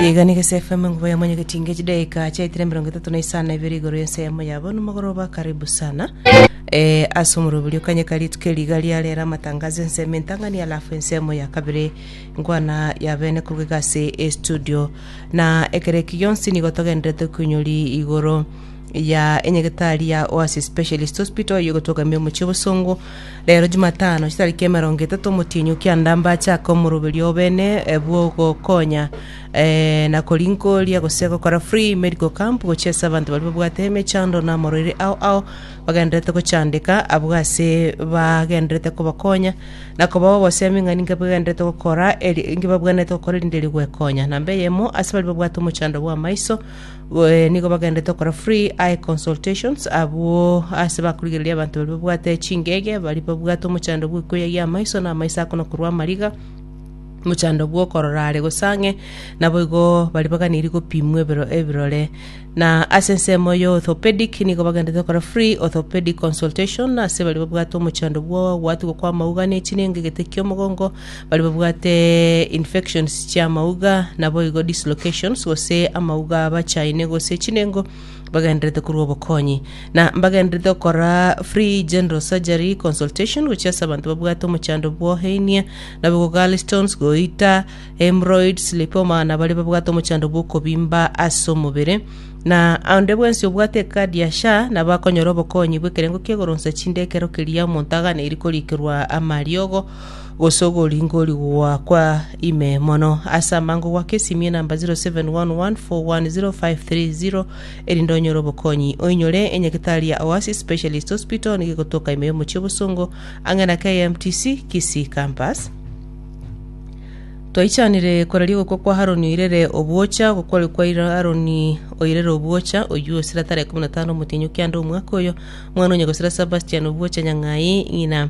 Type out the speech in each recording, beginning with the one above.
Iga niga SFM ngubo ya mwenye getinge chidaika chaitire mirongo itatu na isano ibere igoro yense yamo yabo nomogoroba karibu sana eh, ase omorobiri okanye karituke riga riarera amatangazo ensemo entang'ani alafu ensemo ya kabere nkwana ya bene korwa iga ase estudio na ekero eki gionsi nigo togenderete koinyori igoro ya enyegetari ya Oasis Specialist Hospital oyo egotogamia omochie obosongo Rero Jumatano, chitariki emerongo etato omotienyi o kiandambe achake omoroberio obene bw'ogokonya na korinkooria gose gokora free medical camp gochia ase abanto baria babwate emechando na amorwaire ao ao bagendererete gochandeka abwo ase bagendererete kobakonya na kobao obosemi ng'a ninki bagendererete gokora eri- ninki babwenerete gokora erinde rigwekonya. Namba eyemo ase baria babwate omochando bw'amaiso Nigo bagenderete gokora free eye consultations abwo ase bakorigereria abanto baria babwate chingege, baria babwate omochando bw'okweyayia amaiso na amaiso akono korwa amariga, omochando bw'okorora are gose ang'e, naboigo baria baganirie gopimwa ebero ebirore. Na ase ensemo ya orthopedic nigo bagenderete gokora free orthopedic consultation ase baria babwate omochando bw'ogoatigwa kw'amauga ne chinenga egete ki'omogongo, Baria babwate infections chi'amauga, naboigo dislocations, gose amauga abachaine gose chinengo, bagendererete korwa obokonyi. Na mbagendererete gokora free general surgery consultation gochia ase abanto babwate omochando bw'ohenia, naboigo gallstones, goita, hemorrhoids, lipoma, na baria babwate omochando bw'okobimba ase omobere. Na onde bwensi obwate ekadi ya SHA nabo akonyora obokonyi bw'ekerengo ki'egoronsa chinde ekero keria omonto aganeiri korikerwa amariogo, gose ogoringori gwakwa ime mono ase amango gwaka esimie namba 0711410530 erinde onyore obokonyi oinyore enyagitari ya oasis specialist hospital nigo egotoka ime y'omochie obosongo ang'e na kmtc kisii campus twaichanire koraria ogokwa kwa haroni oirere obwocha ogokwaria kwa Ira- haroni oirere obwocha oyio osira tarehe 15 omotienyi o kianda omwaka oyo mwana onye gosira sebastian obwocha nyang'ai ng'ina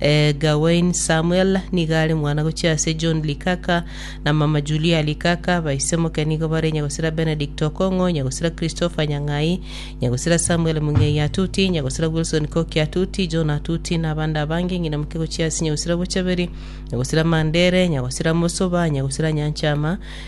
eh, Gawain Samuel nigo are mwana gochia ase John Likaka na mama Julia Likaka. Baisemoke nigo bare Nyagosira Benedict Okong'o, Nyagosira Christopher Nyang'ai, Nyagosira Samuel Mung'ei Atuti, Nyagosira Wilson Koki Atuti, John Atuti na abande abange. Ng'ina moke gochia ase Nyagosira Bochaberi, Nyagosira Mandere, Nyagosira Mosoba, Nyagosira Nyanchama,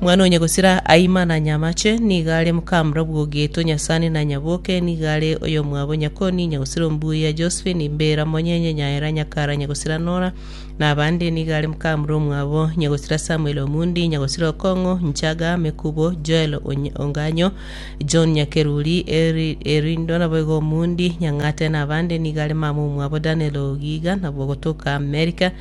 Mwana onye gosira aima na nyamache, nigo are mokamura bw'ogeto nyasani na nyaboke, nigo are oyomwabo nyakoni, inye gosira ombuya Josephine, imbera monyenye nyaera nyakara inye gosira Nora, na abande, nigo are mokamura omwabo inye gosira Samuel Omundi, inye gosira Okong'o, Nchaga, Mekubo, Joel Onye- Onganyo, John Nyakeruri, Eri- Erindo nabo igo Omundi, Nyang'ate na abande, nigo are mama omwabo Daniel Ogiga, nabwo gotoka Amerika,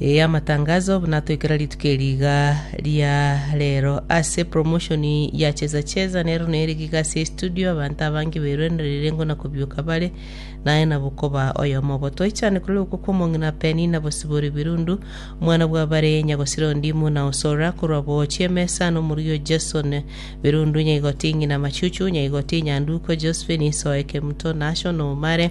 Ee, amatangazo buna atoikera rituko eri iga ria rero ase promotion ya cheza cheza nero nere iga ase estudio abanto abange beruenerire ngo na kobiuka bare naye na bokoba oyomo obo toichane kore okwo kwa omong'ina peni na bosibori birundu omwana bwa bare nyagosira ondimu na osora korwa bochi emesa na omoruyo Jason birundu nyaigoti ng'ina machuchu nyaigoti nyanduko Josephine isoeke mto nasho na omare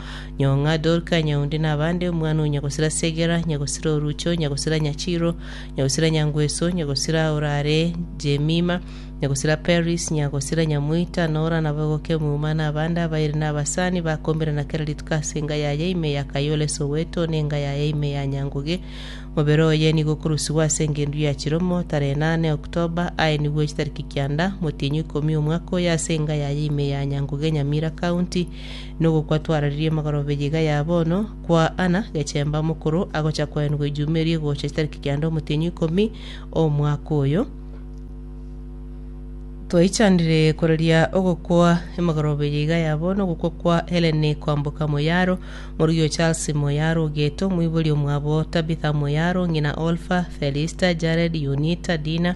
Nyong'a, Dorka, Nyaunde na abande, omwana o Nyagosira Segera, Nyagosira Orucho, Nyagosira Nyachiro, Nyagosira Nyangweso, Nyagosira orare Jemima, Nyagosira Peris, Nyagosira Nyamoita, Nora na Bogoke Muma na abande abairi na abasani bakombirana kera rituko ase enga yaye ime ya Kayole Soweto na enga yaye ime ya Nyanguge. Mobere oye nigo okorusigwa ase engendu ya chiromo tarehe nane October aye nigwo chitariki kianda motienyi ikomi omwaka oyo ase enga yaye ime ya Nyanguge Nyamira County Nogokwa twararirie amagoro b'eyiga ya bono kwa Anna gechemba mokoro agocha koenigwa ejuma eria egocha chitariki kianda omotienyi ikomi omwaka oyo. Twaichanire koraria ogokwa emagoro b'eyiga ya bono ogokwa kwa Helen Kwamboka Moyaro, morugi o Charles Moyaro Ogeto, omoibori omwabo Tabitha Moyaro, ng'ina Olfa, Felista, Jared, Yunita, Dina,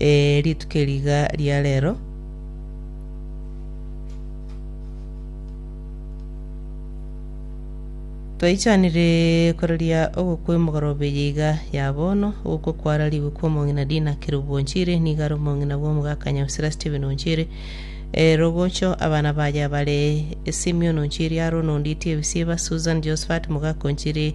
Ee, rituko eri iga ria reero. Twaichanire koraria ogokwa emogoroba eye iga ya bono, ogokwa kwararigwe kwa omong'ina Dina Kerubu Onchere, nigo are omong'ina bw'omogaka Nyabisira Stephen Onchere. E, rogocho abana baye bare Simeon Onchere, Aaron Onditi Ebisiba, Susan Josephat Mogaka Onchere,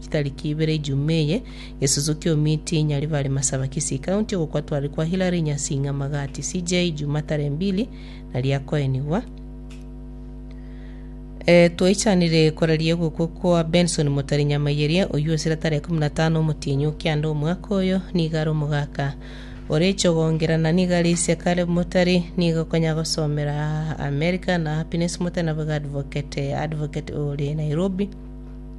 Chitariki ibere Ijumaa eye, gesusu ki'omiti nyari bare Masaba Kisii County ogokwa twari kwa Hilary Nyasing'a Magati CJ Ijumaa tarehe mbili nari akoenigwa. Eh, twaichanire koraria ogokwa kwa Benson Motari Nyamayeria oyio osira tarehe kumi na tano omotienyi o kianda omwaka oyo nigo are omogaka ore chogongera na nigo are ise Caleb Motari nigo okonya gosomera America na Happiness Motari nabo iga advocate advocate ore Nairobi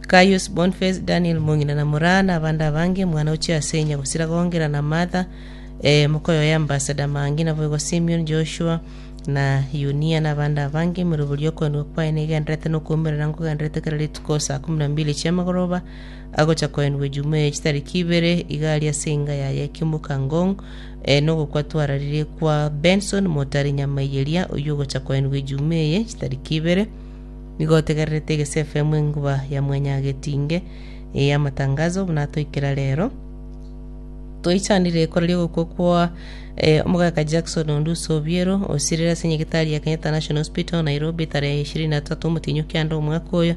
Gaius, Bonface, Daniel, mong'ina na moraa, na abande abange, mwana o chiasenya, gosira gongera na Martha, ee, mokoyo oye ambassador, Mangi, naboigo Simion, Joshua, na Yunia, na abande abange, moiroberie okoenigwa kwaye negenderete na okwoumerera nkogenderete kera rituko saa ikomi na mbili chi'amagoroba, agocha koenigwa Ejumaa eye chitariki ibere, iga aria ase enga yaye Kimuka Ngong, ee, na ogokwa twararirie kwa Benson Motari Nyamaiyeria, oyio ogocha koenigwa Ejumaa eye chitariki ibere, Nigo otegererete egese FM enguba ya mwanyagetinge eya amatangazo buna atoikera rero. Toichanire ekoreria ogokwa kwa eh, omogaka Jackson Onduso Obiero osirire ase nyagetari ya Kenyatta National Hospital Nairobi tarehe ishirini na tatu omotienyo kianda omwaka oyo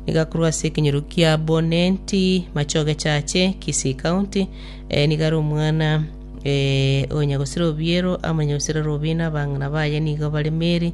nigo akorwa ase ekenyoro kia Bonenti Machoge Chache Kisii County eh, nigo are omwana eh, onyagosira Obiero amanyagosira Robina abang'ina baye nigo bare Mary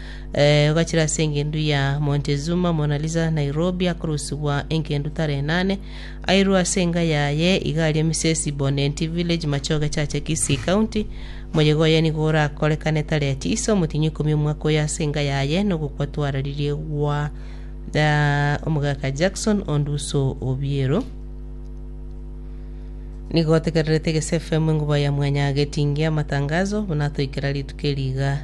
Eh, ogachira ase engendu ya Montezuma, Mona Lisa, Nairobi, akorusibwa engendu tara enane, airwe ase enga yaye, iga aria Misesi Bonenti Village, Machoge Chache, Kisii County. Moyega oye nigo orakorekane tareti ise omotienyi ikomi omwaka oyo ase enga yaye, nogokwa twararirie gwa eh, omogaka Jackson Onduso Obiero. Nigo otegererete Gese FM enguba ya mwanya getingia amatangazo, buna atoikera rituko eri iga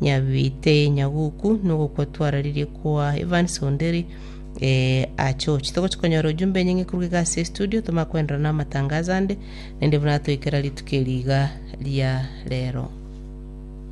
Nyabiite nyaguku nogokwa twararirie kwa Evans Onderi eh, achochi togochi konyora ujumbe enyinge koruga iga ase estudio tomanye koenderana namatangazo ande naende buna atoikera rituko eri iga ria rero.